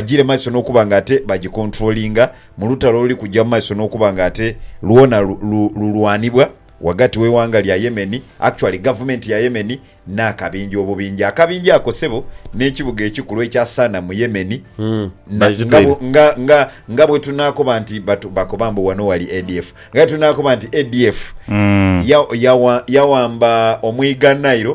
Bagyire maiso n'okuba nga ate bagikontulolinga mu lutalo oluli kugya mu maiso n'okuba nga ate lwona lulwanibwa ghagati w'eighanga lya Yemen, actually gavumenti ya Yemen, n'akabinja obubinja. Akabinja ako ssebo n'ekibuga ekikulu ekya Sana mu Yemen. Nga bwetunaakoba nti bakoba mbu wano wali ADF. Nga bwetunaakoba nti ADF yawamba omwiga Nile.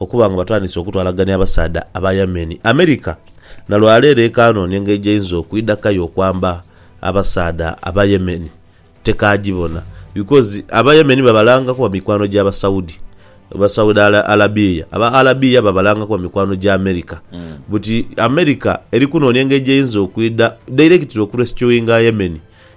okuba nga batandise okutwalagania abasaadha aba Yemen. America na lwa leero ekanoonia engeri gyeeinza okwidha kayo okwamba abasaadha aba Yemen. Tekaagibona because aba Yemen babalanga kuba mikwano gya Basaudi, Basaudi Alabia. Aba Alabia babalanga kuba mikwano gya America. Buti America eri kunoonia engeri gyeeinza okwidha directly okurescuinga Yemen.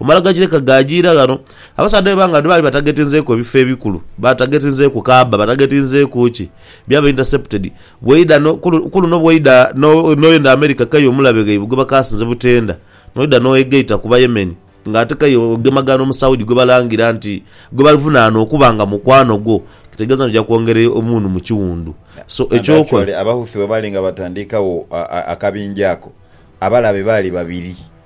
Omala gakireka ghaajiira ghano, abasaadha b'ebanga lino baali batagetinzeeku ebifo ebikulu, batagetinzeeku kaabba, batagetinzeeku ki, byaba intercepted. Bw'oidha no, ku, ku luno bw'oidha no, n'oyenda Amerika kei omulabe ghaibwe gwe bakaasinze butenda, n'oidha n'oegaita ku Bayemen, nga ate kei ogemagana Omusaudi gwe balangira nti, gwe bavunaana okuba nga mukwano gwo, kitegeeza nti oja kwongera omunhu mu kiwundu. So, And eky'okola. actually, Abahouthi bwe baali nga batandiikagho a, a, akabinja ako, abalabe baali babiri.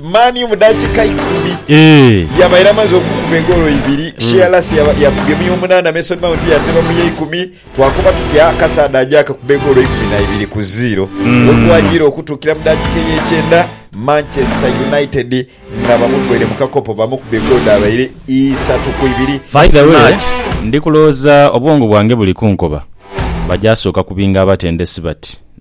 Mani mu dakiika ikumi yaba eramaze okukuba egoolo ibiri. Shearless yakubye mu y'omunaana, Mason Mount yateeba mu y'eikumi. Twakoba tuti akasaadha aje akakube egoolo ikumi na ibiri ku ziiro. Wegwajiire okutuukira mu dakiika ey'ekyenda, Manchester United nga bamutwaire mu kakopo bamukuba egoolo dhabaire isatu ku ibiri. By the way, ndi kulowooza obwongo bwange buli kunkoba, baja sooka kubinga abatendesi bati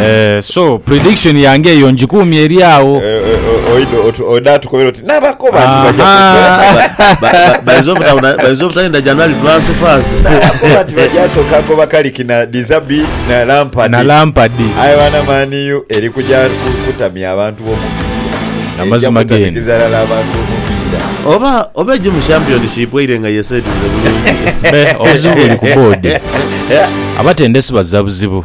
Eeh so prediction yange eyo njikuumye eri agho. Oidha tukobera oti nabakoba nti baja kufa. Bainza obutalinda January twansifansi. Nabakoba nti baja soka koba Carrick na De Zerbi na Lampard. Aye bana Man U eri kuja kutamya abantu bomupiira. Eija kutamikiza ghala abantu bomupiira. Oba oba eje mu championship eire nga yesetinze bulungi. Obuzibu buli ku board. Abatendesi bazza buzibu.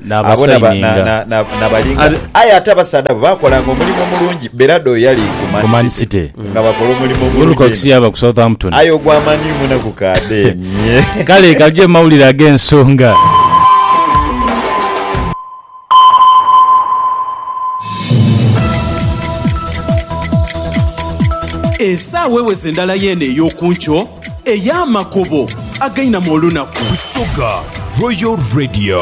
Abo na ba- na- n'abasaininga na- na- nabalinga Ate- aye ate abasaadha abo baakolanga omulimu omulungi berado oyo yali ku ku Man Man City City. nga bakola omulimu omulungi Wilcox inho. yaba ku Southampton. aye ogwa maniu munaku kade nye Kale kaje mu mawulire ag'ensonga. esaawa eweze endala yeeno ey'okunkyo ey'amakubo againamu olunaku Busoga Royal Radio.